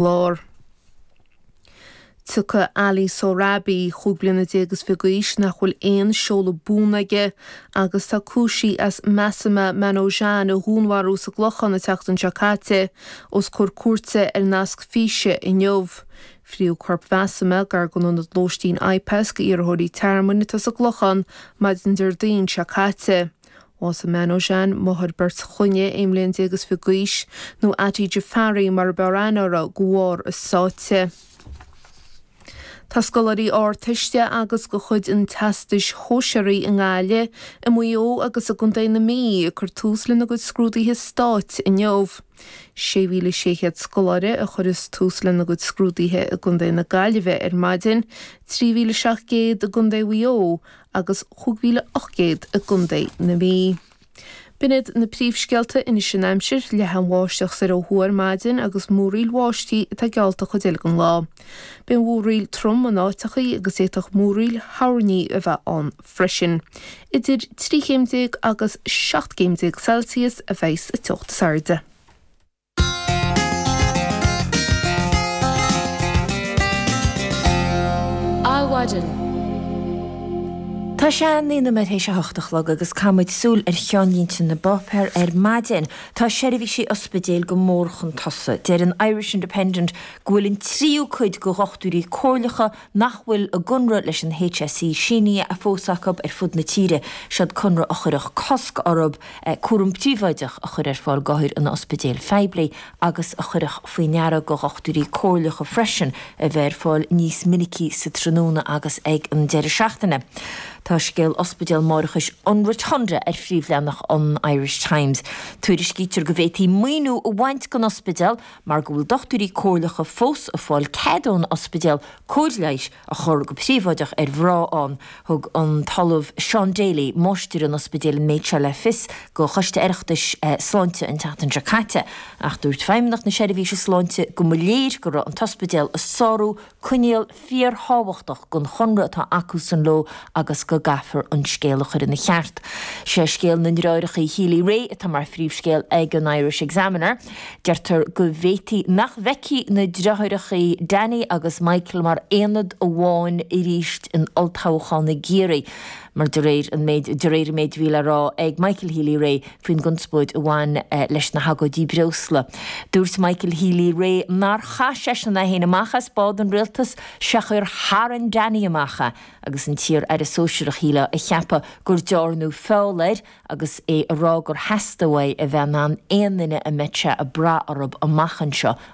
Lár. Tabharfar Ali Sohrabi, cúig bliana déag is fiche d'aois, nach bhfuil aon seoladh buan aige agus atá cúisithe as Masuma Manojan a dhúnmharú sa gClochán an tseachtain seo caite os comhair cúirte ar nasc físe inniu. Frítheadh corp Masuma gar don ionad lóistín IPAS d'iarrthóirí tearmainn atá sa gClochán maidin Déardaoin seo caite. Bhásaigh Manojan, máthair beirt chlainne, aon bhliain déag is fiche d'aois, nó Atti Jafari mar ab fhearr aithne uirthi, de bharr a sáite. Tá scoláirí Ardteiste agus go chuid an Teastais Shóisearaigh i nGaillimh, i Maigh Eo agus i gContae na Mí ag cur tús lena gcuid scrúduithe stáit inniu. 6,600 scoláire a chuireas tús lena gcuid scrúduithe i gContae na Gaillimhe ar maidin, 3,700 i gContae Mhaigh Eo agus 5800 i gContae na Mí. B'in iad na príomhscéalta anois an aimsir. Leathfaidh an bháisteach soir ó thuaidh ar maidin agus múraíl bháistí atá geallta don chuid eile den lá. Beidh an mhúraíl trom in áiteachaí agus d'fhéadfadh múraíl thoirní a bheith ann freisin. Idir trí chéim déag agus seacht gcéim déag Celsius a bheas an teocht is airde. Adhmhaidin. Tá sé naoi nóiméad tar éis a hocht a chlog agus caithfidh muid súil ar cheannlínte na bpáipéar ar maidin. Tá seirbhísí ospidéil go mór chun tosaigh. Deir an Irish Independent go bhfuil an tríú cuid de dhochtúirí comhairleacha nach bhfuil a gconradh leis an HSE sínithe fós acu ar fud na tíre, siod conradh a chuirfeadh cosc orthu cúram príobháideach a chur ar fáil d'othair in ospidéil phoiblí agus a chuirfeadh faoi ndeara go dhochtúirí comhairleacha freisin a bheith ar fáil níos minicí sa tráthnóna agus ag an deireadh seachtaine. Tá scéal ospidéal máithreachais an Rotunda ar phríomhleathnach an Irish Times. Tuairiscítear go bhféadfaí maoiniú a bhaint den ospidéal mar go bhfuil dochtúirí comhairleacha fós ag fáil cead ón ospidéal cóir leighis a chur go príobháideach ar mhná ann. Thug an tOllamh Seán Daly, Máistir an Ospidéil an méid seo le fios go Choiste Oireachtais Sláinte an tseachtain seo caite. Ach dúirt Feidhmeannacht na Seirbhíse Sláinte go mba léir go raibh an t-ospidéal ag sárú Coinníoll fíorthábhachtach den chonradh atá acusan leo agus go gcaithfear an scéal a chur ina cheart. Sé scéal na nDreoireachaí Healy Rae atá mar phríomhscéal ag an Irish Examiner. Deirtear go bhféadfadh sé nach bhfeicfí na dreoireachaí Danny agus Michael mar aonad amháin arís in olltoghchán i gCiarraí mar de réir an méid a bhí le rá ag Michael Healy-Rae faoin gconspóid a bhain leis na hagóidí breosla. Dúirt Michael Healy-Rae nár chaith seisean aon neach amach as bád an rialtais seachas gur tharraing Danny amach é agus an t-iar-aire sóisearach ag ligean le ceapadh gur dearnadh feall air agus é ag rá gur theastaigh uaidh a bheith in ann aon duine a mbeadh sé ag brath orthu amach anseo a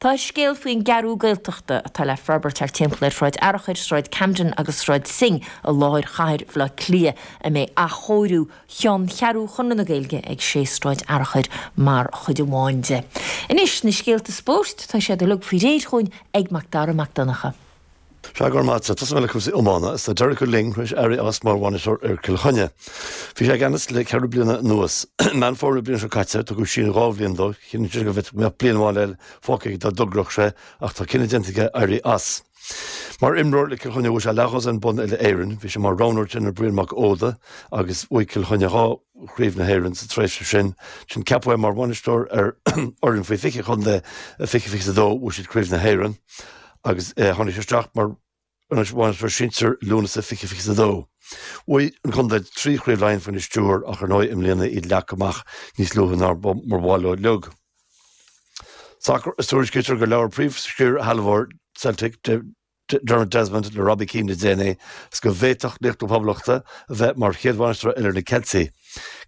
Tá an scéal faoin gCeathrú Gaeltachta, atá le forbairt thart timpeall ar Shráid Fhearchair, Sráid Camden agus Sráid Synge i láthair chathair Bhaile Átha Cliath, is beidh athchóiriú cheanncheathrú Chonradh na Gaeilge ag 6 Sráid Fhearchair mar chuid amháin de. Anois, na scéalta spóirt, tá siad uilig faoi réir chugainn ag Macdara Mac Donncha. Go raibh maith agat, tosóidh mé le cúrsaí iomána. Is tá Derek Ó Luing tar éis éirí as mar bhainisteoir ar Chill Chainnigh. Bhí sé i gceannas le ceithre bliana anuas. I Meán Fómhair na bliana seo caite tugadh síneadh dhá bhliain dó, chiallaigh sé go mbeadh bliain amháin eile fágtha aige dá dtogródh sé ach tá cinneadh déanta aige éirí as. Mar imreoir le Cill Chainnigh bhuaigh sé leathdhosaen bonn uile-Éireann, bhí sé mar roghnóir in éindí le Brian Mac Óda agus bhuaigh Cill Chainnigh dhá Chraobh na hÉireann sa tréimhse sin. Ansin ceapadh é mar bhainisteoir ar fhoireann faoi 20 an chontae, i 2022 bhuaigh siad Craobh na hÉireann agus tháinig sé isteach mar bhainisteoir sinsir i Lúnasa 2022. Bhuaigh an contae trí Chraobh Laighean faoina stiúir ach ar ndóigh i mbliana iad leagtha amach níos luaithe ná mar ba mhaith leo. Sacar, Is tuairiscítear gur labhair príomh-scairshealbhóir Celtic. Dermot Desmond le Robbie Keane le déanaí, is go bhféadfadh laoch na Poblachta a bheith mar chéad bhainisteoir eile ar na Ceiltigh.